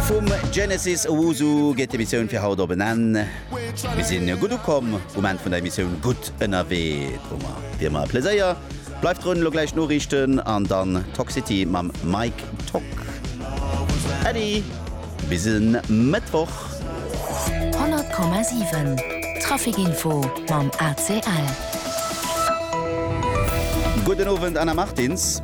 Vum Genesis Owusu geet d'Emissioun fir haut op en Enn. Mir sinn gutt ukomm um Enn vun der Emissioun Gutt ënnerwee, Drummer wéi ëmmer e Pleséier. Bleift drun, elo gläich d'Noriichten an dann Toxity mam Mike Tock. Äddi, bis e Mëttwoch. 100,7 Traficinfo mam ACL. Gudden Owend Anna Martins.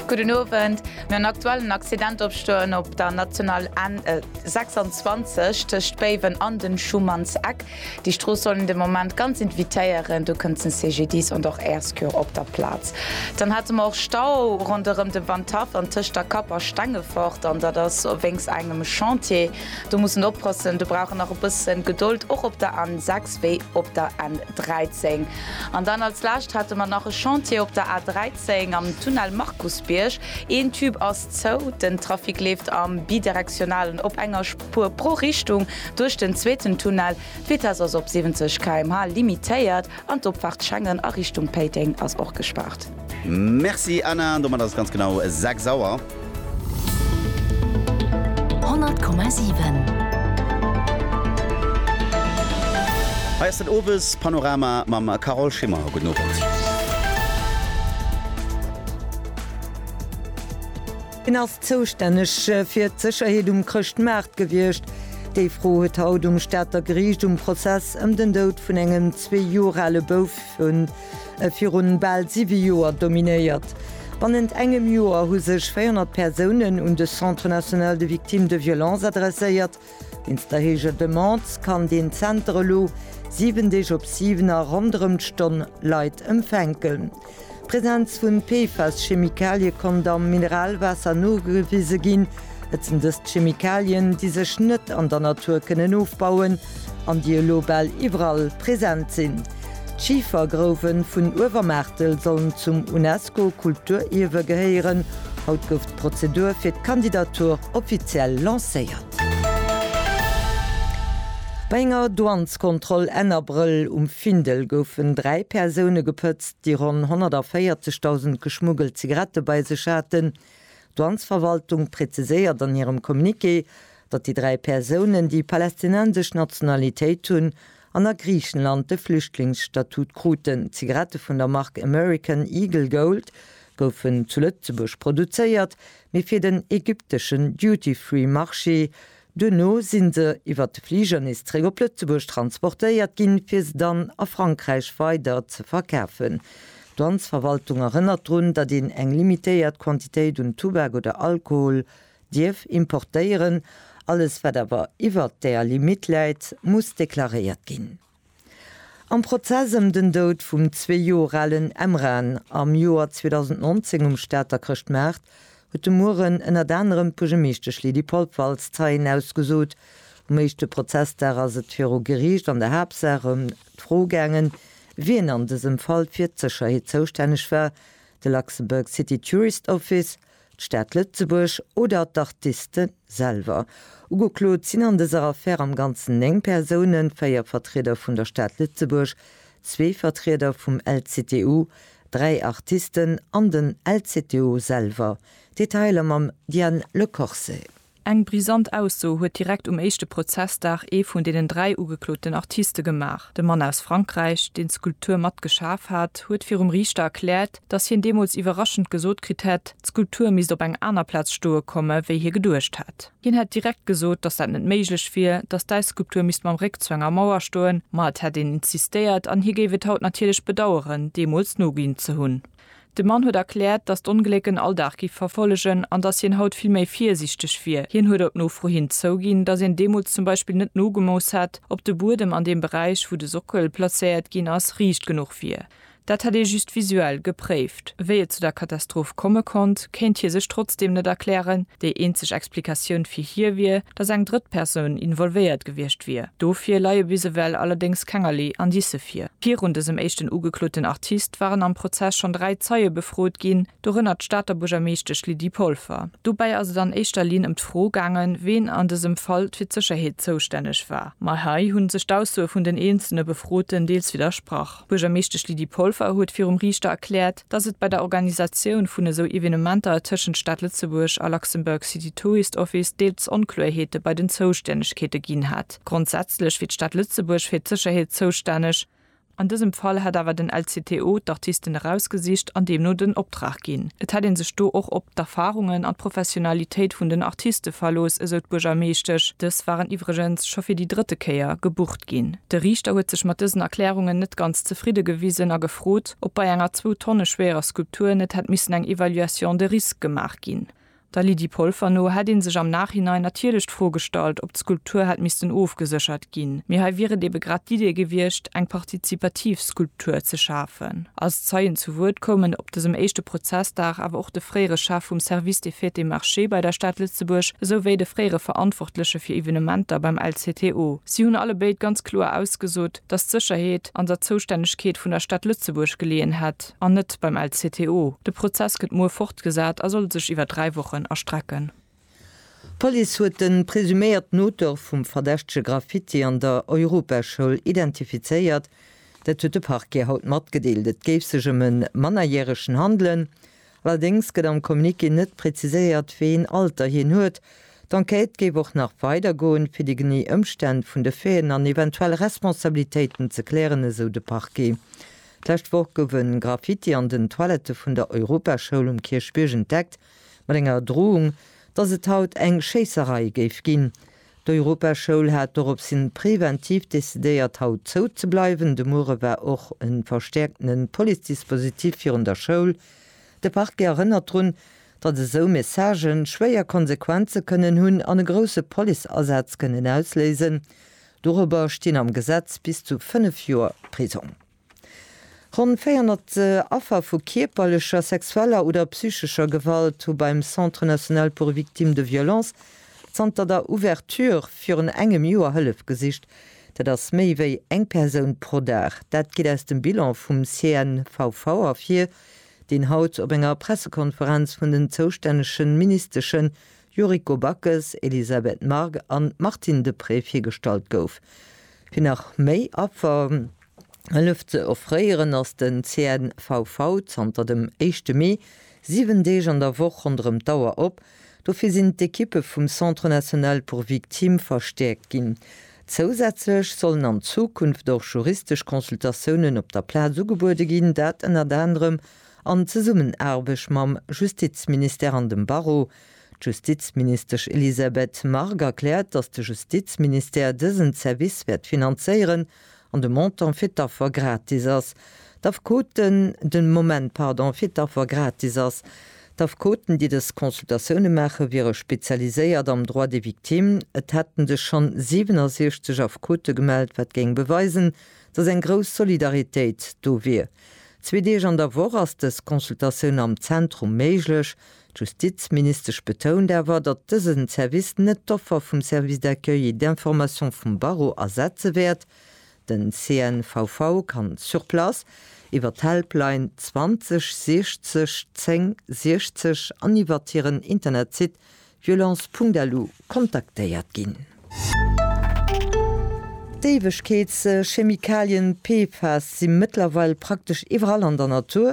Gudden Owend. No en aktuellen Accident op Stoen op der National N 26 tëscht Béiwen an dem Schumannseck. Déi Strooss soll een de Moment ganz evitéieren, do kënnt den CGDIS an och Air Secours op der Plaz. Dann hate mer och Stau ronderëm de Wandhaff an tëscht der Kapp a Stengefort an dat ass wéinst engem Chantier. Do muss en oppassen, do brauch en nach e bësse Gedold, och op der N 6 wéi op der N 13. An dann als Lescht hate mer nach e Chantier op der A13 am Tunnel Markusbierg. Een Tube ass zou, den Trafic leeft am Bidirektionalen op enger Spuer pro Richtung duerch den zweeten Tunnel. D'Vitess ass op 70 km/h limitéiert an d'Opfaart Schengen a Richtung Péiteng ass och gespaart. Merci Anna, an domat ass et ganz genau 6 Auer. 100,7. Hei ass den Owes Panorama mam Carole Schimmer. Gudden Owend. Hien ass zoustänneg fir d'Sécherheet um Chrëschtmaart gewiescht. Déi Fro huet haut um Stater Geriicht um Prozess ëm den Doud vun engem zwee Joer ale Bouf vun. e virun bal siwe Joer dominéiert. Bannent engem Joer hu sech 400 Persounen un de Centre national de victimes de violences adresséiert. Wéinst der héijer Demande kann deen Zenter elo siwen Deeg op siwen a ronderëm d'Stonn Leit empfänken. D'Presenz vu PFAS-Chemikalie konnt am Mineralwaasser nogewise ginn. Et sinn dëst Chemikalien, déi sech net an der Natur kënnen ofbauen. An déi elo bal iwwerall present sinn. D'Schifergrouwe vun Uewermaartel sollen zum UNESCO-Kulturierwe gehéieren. Haut gouf d'Prozedur fir d'Kandidatur offiziell lancéiert. Bei enger Douaneskontroll Enn Abrëll um Findel goufen dräi Persoune gepëtzt, déi ronn 140.000 geschmuggelt Zigarette bei sech haten. D'Douanesverwaltung preziséiert an hirem Communiqué, datt déi dräi Persounen, déi palästinensesch Nationalitéit hunn an a Griichenland de Flüchtlingsstatut kruten. Zigarette vun der Mark American Eagle Gold goufen zu Lëtzebuerg produzéiert, mee fir den ägypteschen Duty-Free-Marché. Duerno si se iwwer de Fliger nees zeréck op Lëtzebuerg transportéiert ginn, fir se dann a Frankräich weider ze verkafen. D'Douanesverwaltung erënnert drun, datt een eng limitéiert Quantitéit un Tubak oder Alkohol Dierf importéieren. Alles wat awer iwwert där Limitt läit, muss deklaréiert ginn. Am Prozess ëm den Doud vum zwee Joer alen Emran am Joer 2019 um Stater Chrëschtmaart huet de Mueren ënnert anerem d'Buergermeeschtesch Lydie Polfer als Zeien ausgesot. Um éischte Prozessdag ass et viru Geriicht an der Haaptsaach ëm d'Fro gaangen, wien an dësem Fall fir d'Sécherheet zoustänneg war, de Luxembourg City Tourist Office, d'Stad Lëtzebuerg oder d'Artiste selwer. Ugeklot sinn an dëser Affär am Ganzen 9 Persounen, 4 Vertrieder vun der Stad Lëtzebuerg, zwee Vertrieder vum LCTU, dräi Artisten an den LCTU selwer. Detailer mam Diane Lecorsais. Eng brisant Ausso huet direkt um éischte Prozessdag ee vun deenen dräi ugekloten Artiste gemaach. De Mann aus Frankräich, deen d'Skulptur mat geschaf hat, huet virum Riichter erkläert, datt hien deemools iwwerraschend gesot kritt hätt, d'Skulptur misst op eng aner Plaz stoe komme wéi hie geduecht hätt. Hien hätt direkt gesot, datt dat net méiglech wier, datt d'Äisskulptur misst mam Réck zu enger Mauer stoen, ma et hätt een insistéiert an hie géif et haut natierlech bedaueren, deemools noginn ze hunn. De Mann huet erkläert, datt d'Ongléck en Alldag giff verfollegen an datt hien haut vill méi virsiichteg wier. Hien huet op Nofro hin zouginn, datt een deemools zum Beispill net nogemooss hätt, ob de Buedem an deem Beräich, wou de Sockel plazéiert ginn ass, riicht genuch wier. Dat hätt ee just visuell gepréift. Wéi et zu der Katastroph komme konnt, kéint hie sech trotzdeem net erklären. Déi eenzeg Explikatioun fir hie wier, datt eng drëtt Persoun involvéiert gewiescht wier. Dofir leie bis ewell allerdéngs kengerlee Indicë vir. Virun dësem éischten ugekloten Artist waren am Prozess schonn dräi Zeie befrot ginn, dorënner d'Stater Buergermeeschtesch Lydie Polfer. Dobäi ass et an éischter Linn ëm d'Fro gaangen, ween an dësem Fall fir d'Sécherheet zoustänneg war. Ma hei hu sech d'Aussoe vun den eenzelne Befroten deels widdersprach. D'Buergermeeschtesch Lydie Polfer huet virum Riichter erkläert, Dass et bei der Organisatioun vun esou Evenementer tëschent Stad Lëtzebuerg a Luxembourg City Tourist Office deels Onkloerheete bei den Zoustännegkeete ginn hat. Grondsätzlech wier d'Stad Lëtzebuerg fir d'Sécherheet zoustänneg. An dësem Fall hätt awer den LCTO d'Artisten erausgesicht an deemno den Optrag ginn. Et hätt ee sech do och op d'Erfarungen an d'Professionalitéit vun den Artiste verlooss, esou d'Buergermeeschtesch. Dës waren iwwregens scho fir déi drëtte Kéier gebucht ginn. De Riichter huet sech mat dësen Erklärungen net ganz zefridde gewisen a gefrot, ob bei enger zwou Tonne schwerer Skulptur net hätt missen eng Evaluation de risque gemaach ginn. Der Lydie Polfer no hätt ee sech am Nachhinein natierlech d'Fro gestallt, ob d'Skulptur hätt missten ofgeséchert ginn, mee hei wier et ebe grad d'Idee gewiescht, eng partizipativ Skulptur ze schafen. Als Zeien zu Wuert koumen op dësem éischte Prozessdag awer och de fréiere Chef vum Service des Fêtes et Marchés bei der Stad Lëtzebuerg esou wéi de fréiere Verantwortleche fir Evenementer beim LCTO. Si hunn allebéid ganz kloer ausgesot, dass d'Sécherheet an der Zoustännegkeet vun der Stad Lëtzebuerg geleeën hätt an net beim LCTO. De Prozess gëtt muer fortgesat a soll sech iwwer dräi Wochen erstrecken. D'Police huet de presuméierten Auteur vum verdächtege Graffiti an der Europaschoul identifizéiert. Dat huet de Parquet haut matgedeelt. Et géif sech ëm e Mannerjäregen handelen, Allerdéngs gëtt am Communiqué net präziséiert, wéi een Alter hien huet. D'Enquête géif och nach weider goen, fir déi genee Ëmstänn vun de Faiten an eventuell Responsabilitéiten ze klären, esou de Parquet. D'lescht Woch gouf e Graffiti an den Toilette vun der Europaschoul um Kierchbierg entdeckt, mat enger Drohung, dass et haut eng Schéisserei géif ginn. D'Europaschoul hat doropshin preventiv decidéiert haut zou ze bleiwen. De muere war och e verstäerkten Police-Dispositif virun der Schoul. De Parquet erënnert drun, datt esou Messagë schwéier Konsequenze kënnen hunn an e grousse Police-Asaz kënnen ausléisen. Dorobber stinn am Gesetz bis zu 5 Joer Prisong. Ronn 400 Affer vu kierperlecher, sexueller oder psychescher Gewalt hu beim Centre national pour victimes de violences zanter der Ouverture virun engem Joer Hëllef gesicht. Dat ass méi wéi eng Persoun pro Dag. Dat geet aus dem Bilan vum CNVV ervir, deen haut op enger Pressekonferenz vun den zoustännege Ministesche Yuriko Backes, Elisabeth Margue an Martine Deprez virgestallt gouf. Fir nach méi Affer. Hëllef ze offréieren, ass den CNVV zanter dem éischte Mee 7 Deeg an der Woch ronderëm d'Auer op. Dofir sinn d'Ekippe vum Centre National pour Victimes verstäerkt ginn. Zousätzlech sollen an Zukunft och juristesch Consultatiounen op der Plaz ugebuede ginn, dat ënnert anerem an Zesummenaarbecht mam Justizministère an dem Barreau. D'Justizministesch Elisabeth Margue erkläert, datt de Justizministère dësen Service wäert finanzéieren. an de Montant fir d'Affer gratis ass, d'Affekoten, den Moment, pardon, fir d'Affer gratis ass, d'Affekoten, déi dës Consultatioune maachen, wiere spezialiséiert am Droit des victimes, et hätten sech schonn 67 Affekote gemellt, wat géing beweisen, dass eng grouss Solidaritéit do wier. Zwee Deeg an der Woch ass dës Consultatioun am Zentrum méiglech, D'Justizministesch betount awer, datt dësen Service net d'Offer vum Service d'accueil et d'information vum Barreau ersetze wäert. Den CNVV kann sur place, iwwer d'Helpline 20 60 10 60 an iwwert hiren Internetsite violence.lu kontaktéiert ginn. D'Éiwegkeetschemikalien PFAS si mëttlerweil praktesch iwwerall an der Natur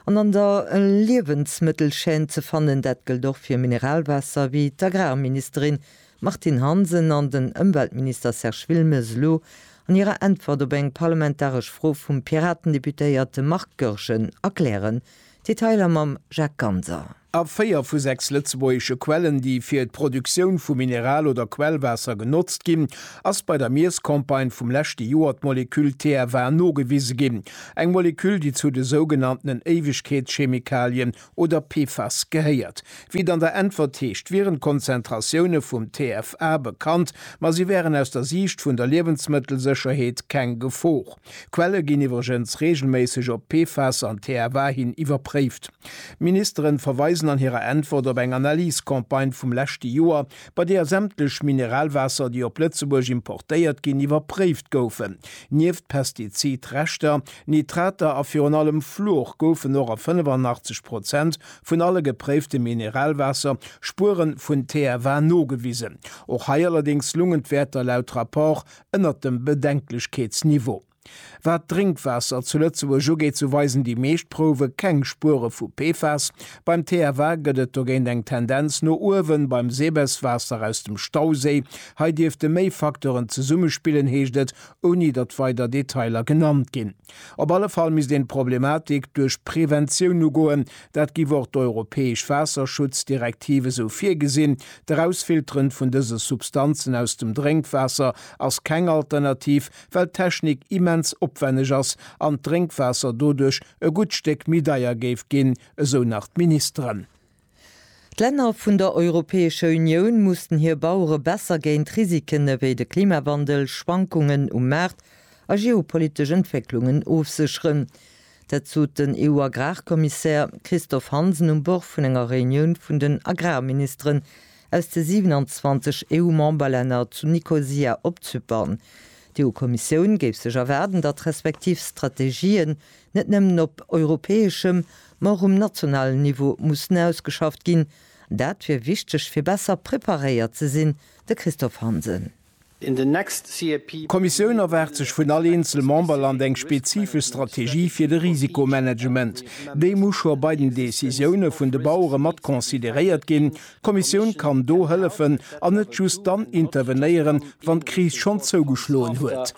an an der Liewensmëttelchaîne ze fannen. Dat gëllt och fir Mineralwaasser, wéi d'Agrarministerin Martine Hansen an den Ëmweltminister Serge Wilmes elo an hirer Äntwert op eng parlamentaresch Fro vum Piraten-Deputéierte Marc Goergen erklären. Detailer mam Jacques Ganser. A véier vu sechs lëtzebuergesche Quellen, déi fir d'Produktioun vu Mineral oder Quellwaasser genotzt ginn, ass bei der Miesscampagne vum leschte Joer d'Moleküll TFA nogewise ginn, eng Moleküll, déi zu de sougenanntenen Éiwegkeetschemikalien oder PFAS gehéiert. Wéi et an der Äntwert heescht, wieren d'Konzentratioune vum TFA bekannt, ma si wären aus der Siicht vun der Liewensmëttelsécherheet keng Gefor. Quelle ginn iwwregens reegelméisseg op PFAS an TFA hin iwwerpréift. D'Ministeren verweisen an hirer Äntwert op eng Analyse-Campagne vum leschte Joer, bei deeër sämtlech Mineralwaasser, déi op Lëtzebuerg importéiert ginn, iwwerpréift goufen. Nieft Pestizid-Reschter, Nitrater a virun allem Fluor goufen och a 85 Prozent vun alle gepréifte Mineralwaasser Spuere vun TFA nogewisen. Och hei allerdéngs lungen d'Wäerter laut Rapport ënnert dem Bedenklechkeetsniveau. Wat d'Drénkwaasser zu Lëtzebuerg ugeet, sou weisen déi meescht Prouwe keng Spuere vu PFAS. Beim TFA gëtt et dogéint eng Tendenz no uewen. Beim Sebes-Waasser aus dem Stauséi, hei dierfte méi Facteuren zesummespillen, heescht et, ouni datt weider Detailer genannt ginn. Op alle Fall misst een d'Problematik duerch Preventioun ugoen. Dat giff och d'europäesch Waasserschutzdirektiv esou virgesinn. D'Erausfilteren vun dëse Substanzen aus dem Drénkwaasser ass keng Alternativ, well d'Technik immens opwenneg ass an d'Drénkwaasser doduerch e gutt Stéck méi deier géif ginn, esou nach d'Ministeren. D'Länner vun der Europäescher Unioun mussen hir Bauere besser géint Risiken ewéi de Klimawandel, Schwankungen um Maart a geopolitesch Entwécklungen ofsécheren. Dat sot den EU-Agrarkommissär Christophe Hansen um Bord vun enger Reunioun vun den Agrarministeren Aus de 27 EU-Memberlänner zu Nikosia op Zypern. D'EU-Kommissioun géif sech erwaarden, datt d'respektiv Strategien net nëmmen op europäeschem, ma och um nationalen Niveau mussen ausgeschafft ginn. Dat wier wichteg, fir besser preparéiert ze sinn, de Christophe Hansen. in the next CAP. D'Kommissioun erwaart sech vun all eenzel Memberland eng spezifesch Strategie fir de Risikomanagement. Déi muss scho bei den Decisioune vun de Bauere mat consideréiert ginn. D'Kommissioun kann do hëllefen an net just dann intervenéieren, wann d'Kris schonn zougeschloen huet.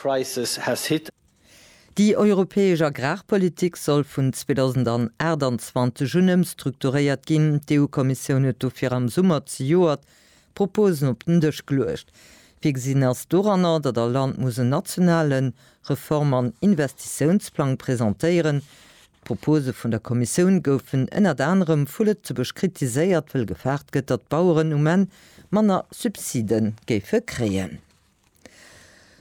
Déi europäesch Agrarpolitik soll vun 2028 un ëmstrukturéiert ginn. D'EU-Kommissioun huet dofir am Summer zejoert Proposen op den Dësch geluecht. Virgesinn ass doranner, datt all Land muss en nationale Reform an Investitiounsplang presentéieren. D'Propose vun der Kommissioun goufen ënnert anerem vu Lëtzebuerg kritiséiert, wëll gefaart gëtt, datt d'Baueren um Enn manner Subside géife kréien.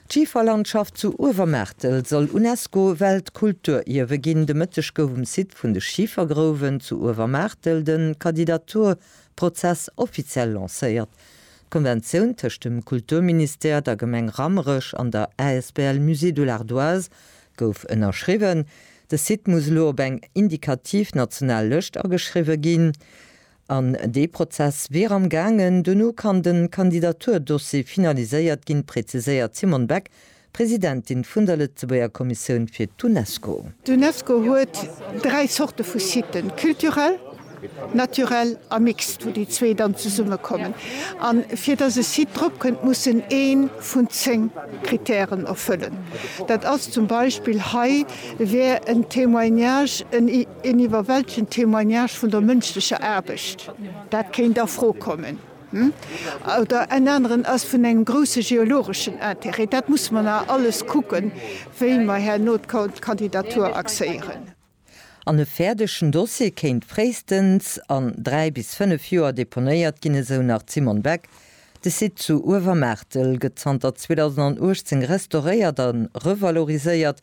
D'Schiferlandschaft zu Uewermaartel soll UNESCO-Weltkulturierwe ginn. De Mëtteg gouf um Site vun de Schifergrouwen zu Uewermaartel de Kandidaturprozess offiziell lancéiert. D'Konventioun tëscht dem Kulturministère, der Gemeng Rammerech an der asbl Musée de l'Ardoise gouf ënnerschriwwen. De Site muss elo op eng indikativ national Lëscht ageschriwwe ginn. An dee Prozess wier am gaangen. Dono kann de Kandidaturdossier finaliséiert ginn, präziséiert d'Simone Beck, Presidentin vun der Lëtzebuerger Kommissioun fir d'Unesco. D'Unesco huet dräi Zorte vu Siten, culturel, naturel a mixt, wou déi zwee dann zesummekommen. A fir datt e Site drop kënnt, muss en ee vun zéng Krittären erfëllen. Dat ass zum Beispill, hei wär en Témoignage, en. Een iwwerwältegend Témoignage vun der mënschlecher Aarbecht, dat kéint a Fro kommen. Oder en aneren ass vun engem grousse geologeschen Interêt. Dat musse mer nach alles kucken, wéi mer herno d'Kandidatur axéieren. An e fäerdegen Dossier kéint fréistens an dräi bis fënnef Joer deponéiert ginn, esou nach d'Simone Beck. De Site zu Uewermaartel gëtt zanter 2018 restauréiert a revaloriséiert.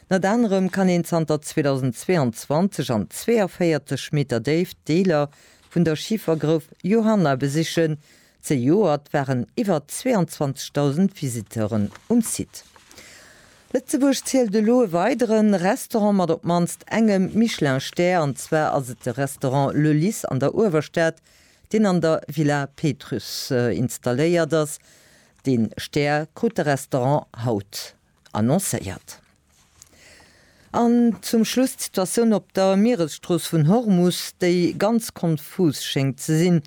Ënnert anerem kann een zanter 2022 an 42 Meter Déift Deeler vun der Schifergrouf Johanna besichen. Zejoert waren iwwer 22.000 Visiteuren um Site. Lëtzebuerg zielt elo e weidere Restaurant mat op d'mannst engem Michelin-Stär, an zwar ass et de Restaurant Le Lys an der Uewerstad, deen an der Villa Pétrusse installéiert ass. Dee Stär krut de Restaurant haut. annoncéiert. An zum Schluss d'Situatioun op der Mieresstrooss vun Hormus, déi ganz konfus schéngt ze sinn.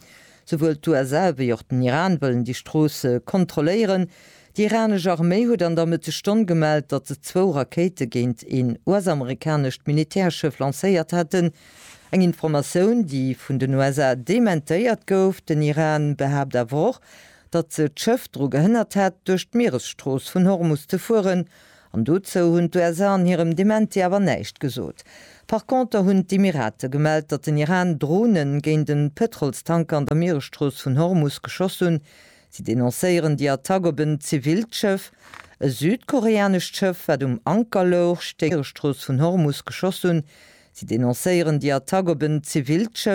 Souwuel d'USA wéi och den Iran wëllen déi Strooss kontrolléieren. Déi iranesch Arméi huet an der Mëttesstonn gemellt, datt se zwou Rakéite géint een US-amerikanescht Militärschëff lancéiert hätten. Eng Informatioun, déi vun den USA dementéiert gouf. Den Iran behaapt awer och, datt se d'Schëff dru gehënnert hätt, duerch d'Mieresstrooss vun Hormus ze fueren, an dozou hunn d'USA an hirem Dementi awer näischt gesot. Par conter hunn d'Emirate gemellt, datt den Iran Dronen géint e Pëtrolstanker an der Mieresstrooss vun Hormus geschoss hunn. Si denoncéieren déi Attack op en zivilt Schëff. E südkoreanescht Schëff, wat um Anker louch, stéing an der Mieresstrooss vun Hormus geschoss hunn. Si denoncéieren déi Attack op en zivilt Schëff.